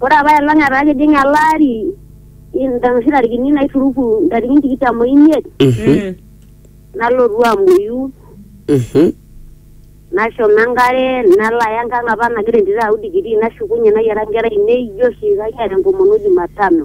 Ore apaelong etaa kejing ele ari inoshi tarikini naituruku ntarikini tikitam oimiet nalotu amuoyu nashomo enkare nalo aya enkang apa nagira entito ayau digirii nashukunye nayiara inkera ainei ijo oshi kayiara enkomono jumatano.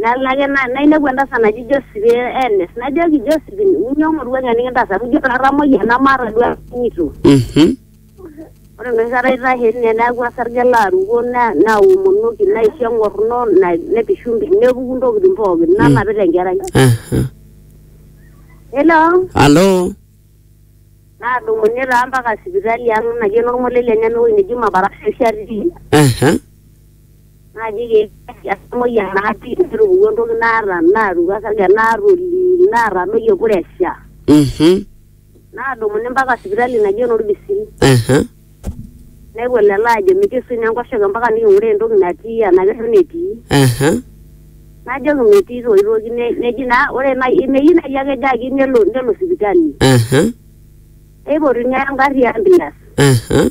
Nalo ake na- nainepu entasat naji Josephine Enes, najoki Josephine, inyoo moruak enikintaas amu ijo atamoyia namaata duo atumito. Mhm. Ore enoshi kata aitashe tine neeku osarge laruko na- naomonoki naisho eng'orno na- nepishu mpi- nepuku ntokitin pookin nanapita enkerai. Aha. Hello? Alo. Nadumunye taa mpaka sipitali ang' naji enorng'ole le Nyamewoi neji Mabarasha oshi atii. Aha. naa keyieu emuoyia natii netupukuo entoki naata naatuku osarge naatoli naatadoyie puresha Mhm. naadumuni mpaka sipitali naji enorbisiri Aha. nepuo lelo aajo mikisuj naa enkoshoke mpaka niking'uraa entoki natii enaa kerruo netii Aha. najoki metii toi toki ne- neji naa ore nai meyieu nai ake ejo ake nelo nelo sipitali Aha. neipotuni engarri e ambulance Aha.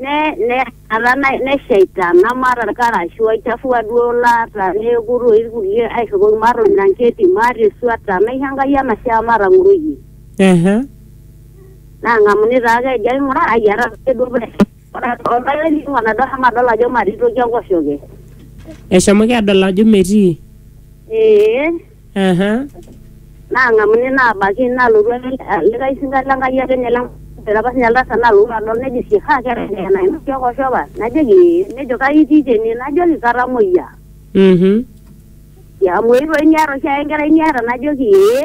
ne ne ata na- neshaita namaata irkarash oichafua duo laata neeku toi irkulie aishopoki maata ormiranketi maata esuata naisho Enkai enashe amu matang'oroyie Ehe. nang'amuni taake ejo ai ng'ura ai etaase duo pee ore oltau likingo nadol amu adol ajo matii toki enkoshoke Eshomoki adol ajo metii. ee Ehe. naang'amu nena abaiki nalotu ake likae sinka le Nkai ake ninye le Nkai apa sinye oltasat nalotu adol nejo sii haa keeta enkerai nainoki okoshi apa najoki ee nejo kai itii tene najoki katamoyia Mhm. amu eetuoki niata oshiake enkerai niata najoki ee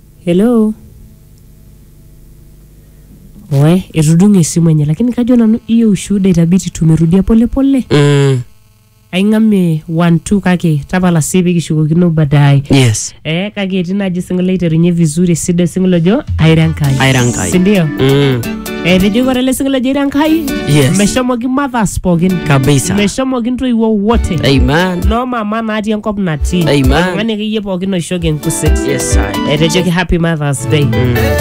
Hello? Oe, etudung'o esimu enye lakini kajo nanu hiyo ushuhuda itabidi tumerudia pole pole. Mm. Aing'amie one two kake tapala sii pikishukokino baadaye. Yes. Eh, kake etii naaji single aiterunye vizuri esidai single ojo aira Enkai. Aira Enkai. Si ndio? Mm. Etejo ore ele sinkolio ejoito Enkai Yes. meshomoki mothers pookin kabisa meshomoki intoiwuo wote amen noo mama natii enkop natii Amen. oltung'ani akeyie pookin oishoki enkuset yes I. etejoki happy mothers day